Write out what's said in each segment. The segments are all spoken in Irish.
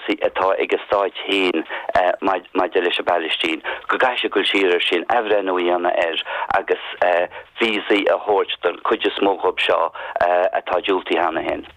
sí atá ag a stáit féin maidir leis an bPalaistín, go gcaithfidh siad dul siar air sin, athbhreithniú a dhéanamh air agus víosaí a thabhairt don chuid is mó dhiob seo atá diúltaithe cheana féin.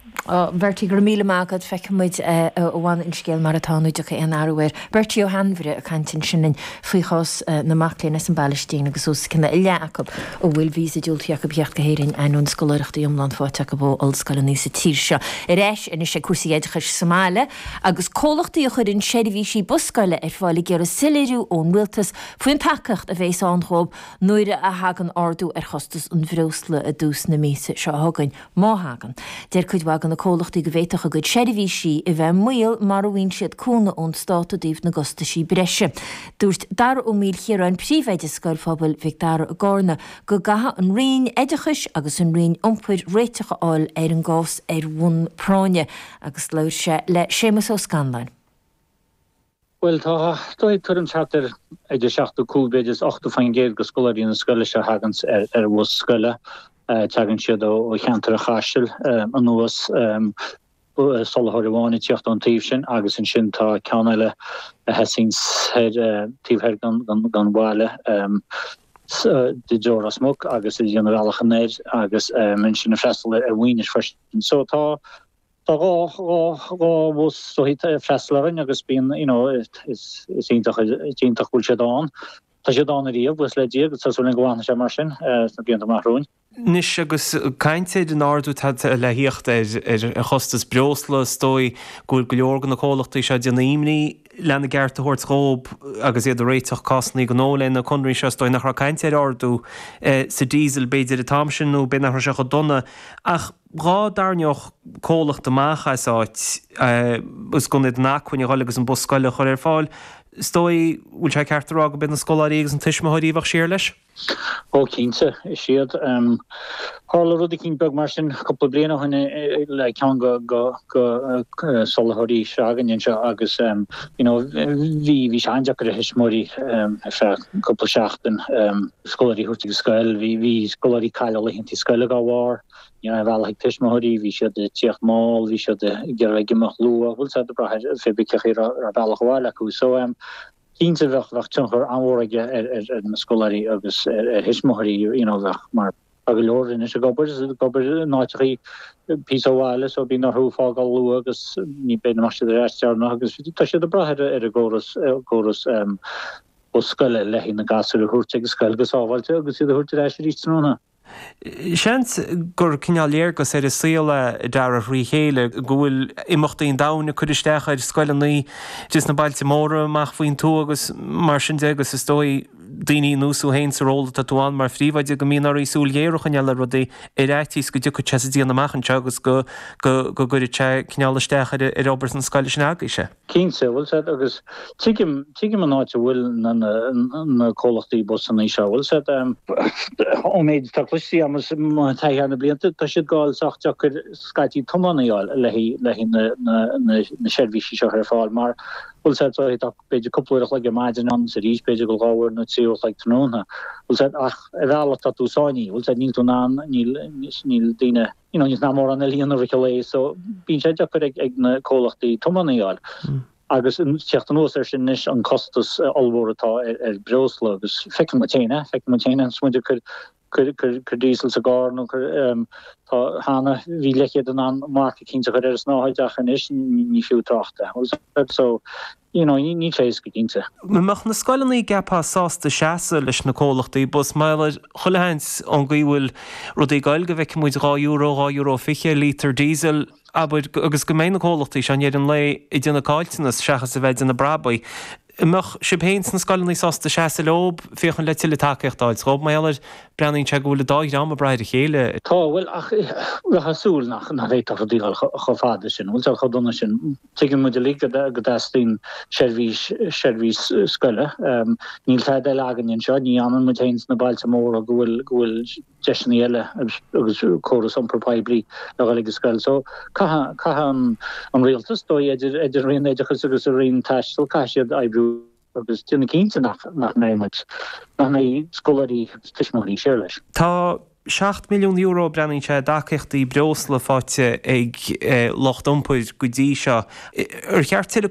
Bertie, go raibh míle maith agat. Feicfidh muid a bhfanfaidh an scéal mar atá nó an dtiocfaidh aon athrú air. Bertie Ó hAinmhire ag caint ansin linn. faoi chás na mac léinn as an bPalaistín agus os cionn a leath acu a bhfuil víosa diúltaithe acu thíocht go hÉirinn, ainneoin scoláireachtaí iomlán faighte acu ó ollscoileanna sa tír seo. Ar ais anois ag cúrsaí oideachais sa mbaile agus comhlachtaí a chuireann seirbhísí bus scoile ar fáil ag iarraidh soiléiriú ón rialtas faoin tacaíocht a bhéas ann dhóibh nuair a thagann ardú ar chostas an bhreosla i dtús na míosa seo chugainn. Má thagann, deir cuid mhaith de na comhlachtaí go bhféadfadh a gcuid seirbhísí a bheith i mbaol mura bhfaigheann siad cúnamh ón stát i dtaobh na gcostaisí breise. Dúirt Dara Ó Maoilchiaráin, Príomhoide Scoil Phobail Mhic Dara i gCarna, go gcaithfeadh an Roinn Oideachais agus an Roinn Iompair réiteach a fháil ar an gcás ar bhonn práinne agus labhair sé le Séamus Ó Scanláin. Bhuel, is dóigh ag tuairim thart ar idir 75 b'fhéidir is 80% de scoláirí na scoile seo thagann ar bhus scoile, tagann siad ó cheantar an Chaisil anuas, soláthróir amháin ag tíocht ón taobh sin agus ansin tá ceann eile a thosaíonn soir taobh thoir den bhaile i dtreo Ros Muc agus a dhéanann a bhealach anoir agus ansin ag freastal ar Mhaínis freisin. So tá Tá dhá dhá bhus rothaí ag freastal orainn agus bíonn you know is is iontach is iontach go bhfuil siad ann. Tá siad ann ariamh buíochas le Dia agus tá súil linn go bhfanfaidh sé mar sin sna blianta amach romhainn. Anois agus caint ar an ardú atá le theacht ar ar chostas breosla is dóigh go bhfuil go leor de na comhlachtaí seo ag déanamh imní lena gceart a thabhairt dhób agus iad ag réiteach cásannaí gnó le na conarthaí seo. Is dóigh nach raibh caint ar ardú sa diesel b'fhéidir an t-am sin nó b'fhéidir nach raibh sé chomh dona ach dhá dtarraingeodh comhlacht amach as áit agus gan iad in acmhainn a dhul agus an bus scoile a chur ar fáil. Is dóigh, bhfuil sé ceart a rá go b'iad na scoláirí agus na tuismitheoirí a bheadh siar leis? Ó cinnte, is iad. Tharla rud eicín beag mar sin cúpla bliain ó shin le ceann go go soláthróirí s'againne anseo agus you know bhí bhí sé an-deacair a thuismitheoirí ar feadh cúpla seachtain scoláirí a thabhairt ag an scoil, bhí bhí scoláirí cailleadh laethanta scoile dá bharr. Ní raibh bealach ag tuismitheoirí, bhí siad ag tíocht mall, bhí siad ag iarraidh imeacht luath, bhí siad ag brath ar féachaint an raibh bealach abhaile acu. So cinnte bheadh bheadh tionchar an-mhór aige ar ar ar na scoláirí agus ar ar thuismitheoirí you know bheadh mar tá go leor anois ag obair is ag obair in áiteachaí píosa ó bhaile so bíonn orthu fágáil luath agus ní bhíonn siad ar ais go deireanach agus tá siad ag brath ar ar an gcóras ar córas iompair scoile le haghaidh na gasúir a thabhairt ag an scoil go sábháilte agus iad a thabhairt ar ais arís tráthnóna. Seans gur cineál léargas ar an saol é, dearadh tríd a chéile, go bhfuil imeachtaí an domhain ag cur isteach ar scoileanna idir sna bailte móra amach faoin tuath agus mar sin de agus is dóigh daoine ar nós thú féin sa ról atá tú ann mar phríomhoide go mbíonn oraibh súil ghéar a choinneáil ar rudaí ar fhaitíos go dtiocfaidh sé sa deireadh amach anseo agus go gcuirfidh sé cineál isteach ar obair na scoile seo agaibhse. Cinnte, an bhfuil a fhios agat, agus tuigim, tuigim an áit a bhfuil na, na, na comhlachtaí bus anois leis seo, an bhfuil a fhios agat, ón méid atá cloiste agam is mo thaithí thar na blianta, tá siad dhá fháil sách deocair scaití tiománaithe a fháil le haghaidh, le haghaidh na, na, na, na seirbhísí seo a chur ar fáil mar, an bhfuil a fhios agat, tá b'fhéidir cúpla uair a chloig ar maidin ann is arís b'fhéidir eile dhá uair nó trí uair a chloig tráthnóna, an bhfuil a fhios agat, ach ar bhealach tá tú sáinnithe, an bhfuil a fhios agat, níl tú in ann, níl, níl daoine, you know, níl siad in ann mórán eile ina fhriotal é so bíonn sé deacair ag ag na comhlachtaí tiománaithe a fháil. Agus ag teacht anuas air sin anois an costas ollmhór atá ar ar breosla agus feiceann muid féin é, feiceann muid féin é, is muid ag cur cuir cuir cuir díosal sa gcarr nó cuir ehm tá cheana bhí leathchéad in ann marc eicínt a chur ar an snáthaid ach anois ní fiú trácht air, so you know ní níl sé éasca cinnte. An mbeadh na scoileanna a gceapfá sásta seasamh leis na comhlachtaí bus mar gheall ar chuile sheans ón gcaoi a bhfuil rudaí ag gabhail go bhfeicfimid dhá euro, dhá euro fiche ar líotar diesel abair agus go mbeidh na comhlachtaí seo i ndeireadh an lae ag déanamh caillteanas seachas a bheith ag déanamh brabaigh. An mbeadh sibh féin sna scoileanna sásta seasamh leob, féachaint le tuilleadh tacaíochta a fháilt dhób mar gheall ar breathnaíonn sé go bhfuil an dá dhream ag brath ar a chéile. Tá, bhuel ach bheifeá ag súil nach nach bhféadfadh rudaí dhul chomh fada sin, an bhfuil sé chomh dona sin? Tuigeann muid uilig go dteastaíonn seirbhís, seirbhís scoile. Níl tada eile againne anseo, ní fhanann muid féin sna bailte móra go bhfuil, go bhfuil deiseanna eile agus córas iompar poiblí le dhul ag an scoil. So, caithfidh, caithfidh an, an Rialtas, is dóigh idir, idir an Roinn Oideachais agus an Roinn Taistil, caithfidh siad oibriú. agus déanamh cinnte nach mbeidh muid, nach mbeidh scoláirí agus tuismitheoirí thíos leis. Tá €7 milliún, breathnaíonn sé, i dtacaíochtaí breosla faighte ag lucht iompair go dtí seo. Ar cheart tuilleadh